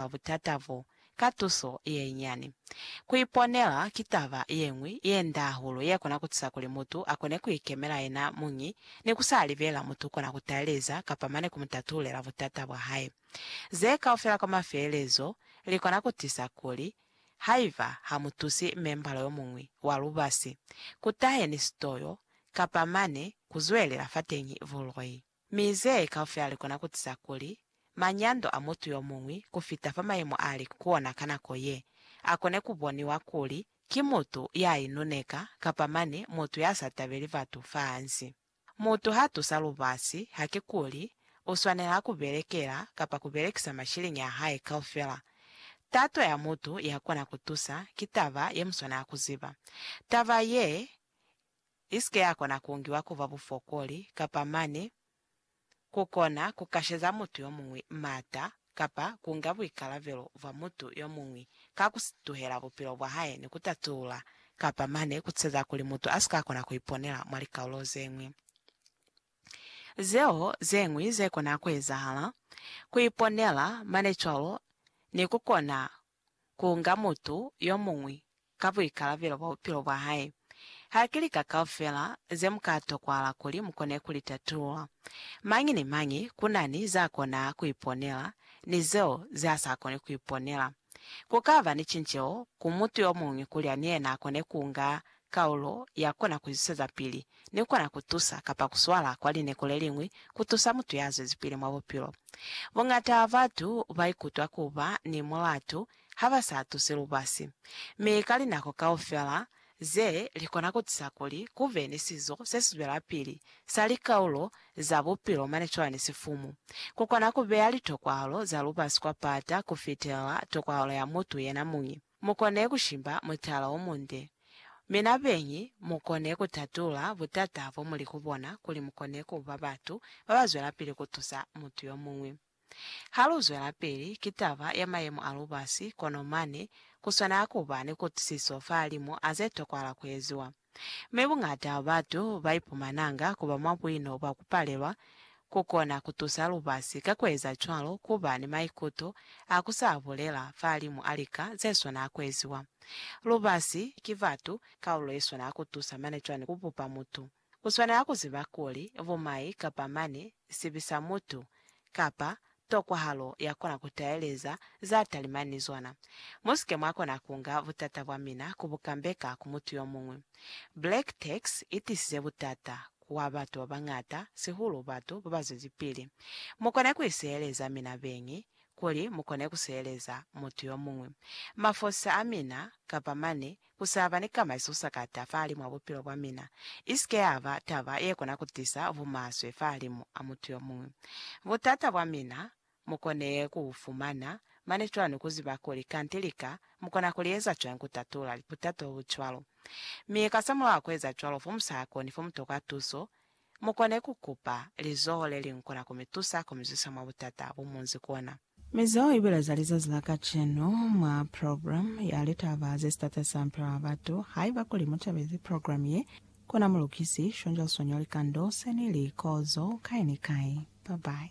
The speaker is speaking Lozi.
mwa butata bo ka tuso yenyinyani. Ku iponela ki taba ye ñwi ye nda hahulu ye kona ku tusa kuli mutu a kone ku ikemela yena muñi ni ku sa libela mutu kona ku taeleza kapa mane ku mu tatulela butata bwa hae. Ze kaufela kwa mafelelezo li kona ku tisa kuli haiba ha mu tusi membala yo muñwi wa lubasi, ku tahe ni sitoyo kapa mane ku zwelela fateñi buloi. Mi ze kaufela likona kutiza kuli, manyando a mutu yomuñwi kufita fa mayemo ali ku ona ka nako ye, akone kuboniwa kuli ki mutu ya inuneka kapa mane mutu ya sa tabeli batu fa hansi. Mutu ha tusa lubasi, hakikuli uswanela kubelekela kapa kubelekisa mashiliñi a hae kaufela. Tato ya mutu ya kona kutusa ki taba ye muswanela kuziba. Taba ye i si ke ya kona ku ngiwa ku ba bufokoli kapa mane ku kona ku kasheza mutu yo muñwi m'ata kapa ku nga buikalabelo bwa mutu yo muñwi ka ku si tuhela bupilo bwa hae ni ku tatulula kapa mane ku ceza kuli mutu a si ka kona ku iponela mwa likaulo ze ñwi zeo ze ñwi ze kona ku ezahala, ku iponela mane cwalo ni ku kona kuunga mutu yomuñwi ka buikalabelo bwa bupilo bwahae. Haki lika kaufela zemuka tokwahala kuli mukone kulitatulula. Mañi ni mañi kunani zakona kuiponela ni zeo zeasakoni kuiponela. Kukaba ni cinceho ku mutu yomuñwi kuli ni yena akone kuunga Kaulo ya kona ku zwisezapili ne kona ku tusa kapa ku swala kwa lineko le liñwi ku tusa mutu ya zwezipili mwa bupilo. Buñata bwa batu ba ikutwa ku ba ni mulatu ha ba sa tusi lubasi. Mi ka linako kaufela ze, li kona ku tisa kuli ku be ni sizo se si zwelapili sa likaulo za bupilo mane cwalo ni sifumu. Ku kona ku beya litokwahalo za lubasi kwa pata ku fitelela tokwahalo ya mutu yena muñi. Mukone kushimba mutala womunde. Mi nabeñi mukone kutatula butata bomuli kubona kuli mukone kuba batu babazwelapili kutusa mutu yomuñwi. Haluzwelapili, ki taba ya mayemo a lubasi, kono mane kuswanela kuba ni kutwisiso fahalimu a zetokwahala kueziwa. Mi buñata batu baipumananga kuba mwa buino bwa kupalelwa kukona kutusa lubasi ka kueza cwalo, kuba ni maikuto a kusa bulela fahalimu a lika zeswana kueziwa. Lubasi, ki batu, kaulo yeswana kutusa mane cwani kubupa mutu. Uswanela kuziba kuli bumai kapa mane sibi sa mutu, kapa Tokwahalo ya kona ku taeleza za talima ni zona. Mu si ke mwa kona ku nga butata bwa mina ku bu kambeka ku mutu yo muñwi. Black Tax i tisize butata kwa batu ba bañata, sihulu batu ba ba zwezipili. Mu kone ku iseheleza mina beñi kuli mu kone ku seheleza mutu yo muñwi, mafosisa a mina, kapa mane Ku sa ba ni kamaiso sa ka ta fahali mwa bupilo bwa mina i si ke ya ba taba ye kona ku tisa bumaswe fahalimu a mutu yo muñwi. Butata bwa mina mu kone ku bu fumana mane cwani ku ziba kuli kanti lika mu kona ku li eza cwañi ku tatula butata bo bu cwalo? Mi kasamulaho wa ku eza cwalo fo mu sa koni fo mu tokwa tuso mu kone ku kupa lizoho le li nkona ku mi tusa ku mi zwisa mwa butata bo mu nzi kona. Mizoho ibile za lizazi la kacenu mwa programme ya litaba ze Sitateli sa Mipilo ya Batu. Haiba kuli mu tabezi programme ye, ku na mulukisi, shonja, sonyo, likando, seni, li, kozo, kai ni kai. Bye bye.